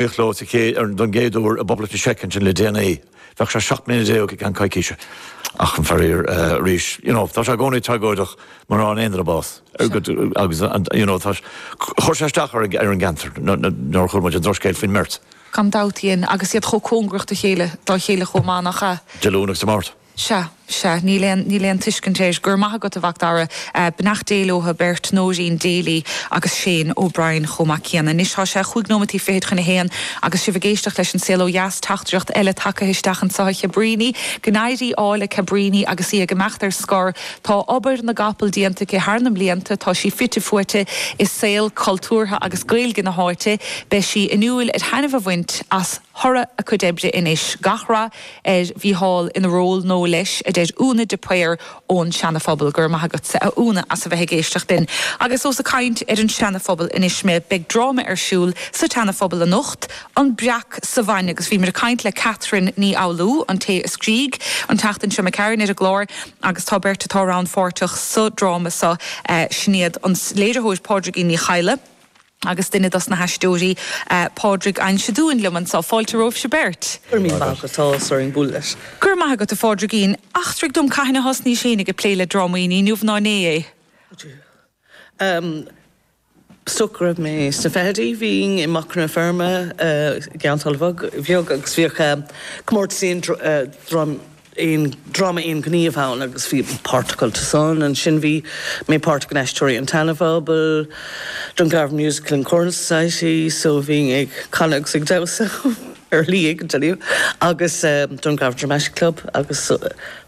Bhí Leo sa chéad, don gcéad uair i bPoblacht na Seice ansin le déanaí. Bheadh sé seacht mbliana déag i gceann coicíse. Ach, faraor, arís, you know, tá sé i gcónaí tragóideach má fhaigheann aon duine bás agus an, you know, tá, chuir sé isteach ar an gceantar nuair a chuala muid an drochscéal faoin mbeirt. Gan dabht, dhein, agus iad chomh cóngarach do chéile, dá chéile chomh maith, nach ea? Dé Luain agus Dé Máirt. Sea, sea, níl aon, níl aon tuiscint. Go raibh maith agat, a Mhic Dara. Beannacht Dé leotha beirt, Nóirín Daly agus Shane O'Brien chomh maith céanna. Anois tá sé chúig nóimeataí fichid chun a haon agus sibh ag éisteacht leis An Saol Ó Dheas, teachtaireacht eile tagtha isteach anseo a Chabríní. Go n-éirí ádh le Cabríní agus í ag imeacht ar scor. Tá obair na gcapall déanta aici thar na mblianta, tá sí fite fuaite i saol cultúrtha agus Gaeilge na háite. Beidh sí in iúil ar thaitneamh a bhaint as. thoradh a cuid oibre anois. Gach rath ar Mhícheál ina ról nua leis, a deir Úna de Paor ón Seana Phobal. Go raibh maith agatsa a Úna as a bheith ag éisteacht linn. Agus ós ag caint ar an Seana Phobal anois mé, beidh dráma ar siúl sa tSeana Phobal anocht, An Breac sa Bhainne, agus bhíomar ag caint le Catherine Ní Fhoghlú, an té a scrígh an tseachtain seo a ghabh tharainn ar an gclár, agus tá beirt atá rannpháirteach sa dráma seo, sin iad an léiritheoir Pádraigín Ní Chadhla, Agus duine dos na haisteoirí, Pádraig Ansin. Tánn siad liom anso, fáilte romhaibhse beirt! Go raibh maith agat, tá áthas orainn bualadh leat. Go raibh maith agat a Phádraigín. Eachtraigh dom cathain a thosnaís féin ag, ag plé le drámaí? Ní inniu ná inné é. Is dócha go raibh mé sna fichidí. Bhínn i Macra na Feirme i gCionn tSáile Beag agus bhíodh comórtas aon aon dráma aon ghníomh ann agus bhí páirt agamsa san. Ansin bhí mé páirteach in Aisteoirí an tSeanphobail, Dungarvan Musical and Choral Society so bhínn ag canadh agus ag damhsa ar shlí éigin anyway agus Dungarvan Dramatic Club agus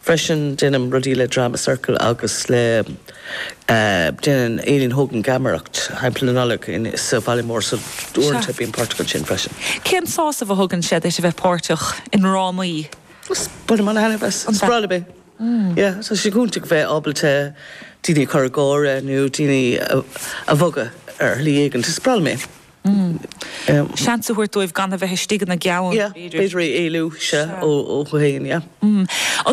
freisin deinim rudaí le Drama Circle agus le déanann Aileen Hogan geamaireacht timpeall na Nollag in sa Bhaile Mór so Sea. uaireanta bím páirteach ansin freisin. Cén sásamh a thugann sé duit a bheith páirteach i ndrámaí? Ó bainim an-taitneamh as ar scor ar bith. Yeah, tá sé go hiontach a bheith ábalta daoine a chur ag gáire nó daoine a bhogadh ar shlí éigint. Is breá liom é. Seans a thabhairt dóibh gan a bheith istigh ina gceann, b'fhéidir. Yeah, b'fhéidir é éalú, sea, ó thú féin, yeah. An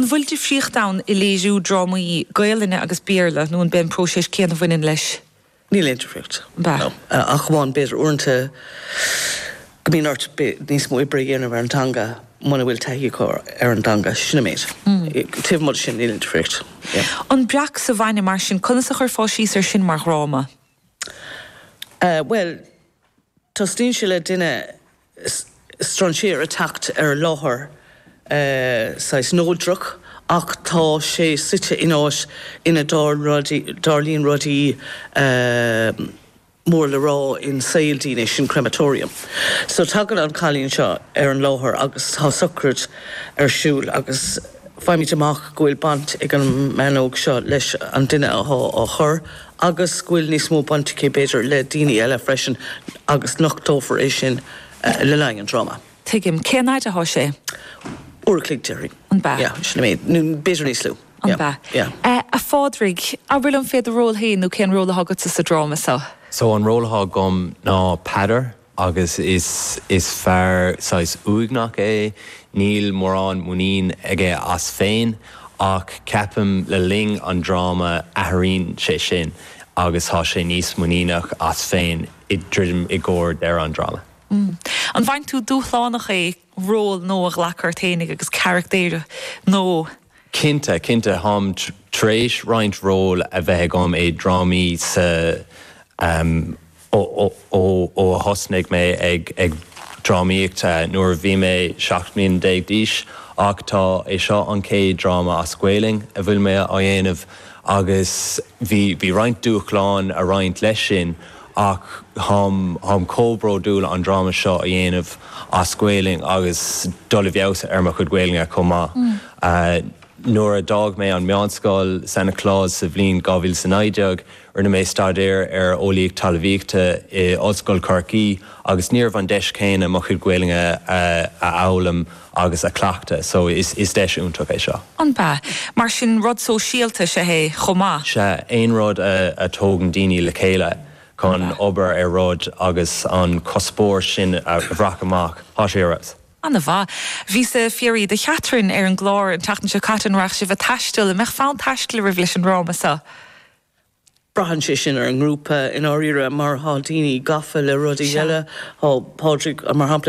bhfuil difríocht ann i léiriú drámaí Gaelainne agus Béarla nó an b'é an próiseas céanna a bhaineann leis? Níl aon difríocht. No. Ach amháin b'fhéidir uaireanta go mbíonn ort níos mó oibre a dhéanamh ar an dteanga muna bhfuil taithí acu ar an dteanga. Sin an méid. Taobh amuigh de sin níl aon difríocht. An breac sa bhainne mar sin, conas a chuirfeá síos ar sin mar dhráma? Bhuel, tosnaíonn sé le duine strainséir ag teacht ar láthair saghas neodrach ach tá sé suite in áit ina dtarlaíonn rudaí mór le rá in saol daoine, sin crematorium. So tagann an cailín seo ar an láthair agus tá sochraid ar siúl agus. Faighimid amach go bhfuil baint ag an mbean óg seo leis an duine atá á chur agus go bhfuil níos mó baint aici, b'fhéidir, le daoine eile freisin agus nochtófar é sin le linn an dráma. Tuigim. Cén fhaid atá sé? Uair a chloig, déarfainn. An bea? Yeah, sin é. Nó b'fhéidir níos lú. An bea? Yeah. A Phádraig, abair fé do ról féin nó cén ról atá agatsa sa dráma seo? So, an ról atá agam ná Peadar. agus is is fear saghas uaigneach é, níl mórán muinín aige as féin ach ceapaim le linn an dráma athraíonn sé sin agus tá sé níos muiníneach as féin ag druidim i gcomhair dheireadh an dráma. An bhfaigheann tú dúshlánach é ról nó a ghlacadh ort fhéinig agus carachtair nó. Cinnte, cinnte. Táim tar éis roinnt ról a bheith agam i drámaí sa ó a thosnaigh mé ag ag drámaíocht nuair a bhí mé 17 mbliana d'aois ach tá é seo an chéad dráma as Gaeilge a bhfuil mé á dhéanamh agus bhí bhí roinnt dúshláin ag roinnt leis sin ach táim chomh bródúil an dráma seo a dhéanamh as Gaeilge agus dul i bhfeabhas ar mo chuid Gaeilge chomh maith. Nuair a d'fhág mé an meánscoil, San Nioclás, sa bhliain 2019, rinne mé staidéar ar Eolaíocht Talamhaíochta i Ollscoil Chorcaí agus ní raibh an deis céanna mo chuid Gaeilge a fhoghlaim. agus a cleachtadh so is deis iontach é seo. An bea? Mar sin rud sóisialta is ea é chomh maith? Sea, aon rud a tógann daoine le chéile chun obair ar rud agus an cuspóir sin a bhaint amach. Tá sé ar eolas. Ana mhaith. Bhíos ag fiafraí do Chatherine ar an gclár an tseachtain seo caite an raghaidh sibh a' taisteal, an mbeadh fonn taistil oraibh leis an ndráma so? Braitheann sé sin ar an ngrúpa i ndáiríre mar thá daoine gafa le rudaí eile, thá Pádraig mar shampla,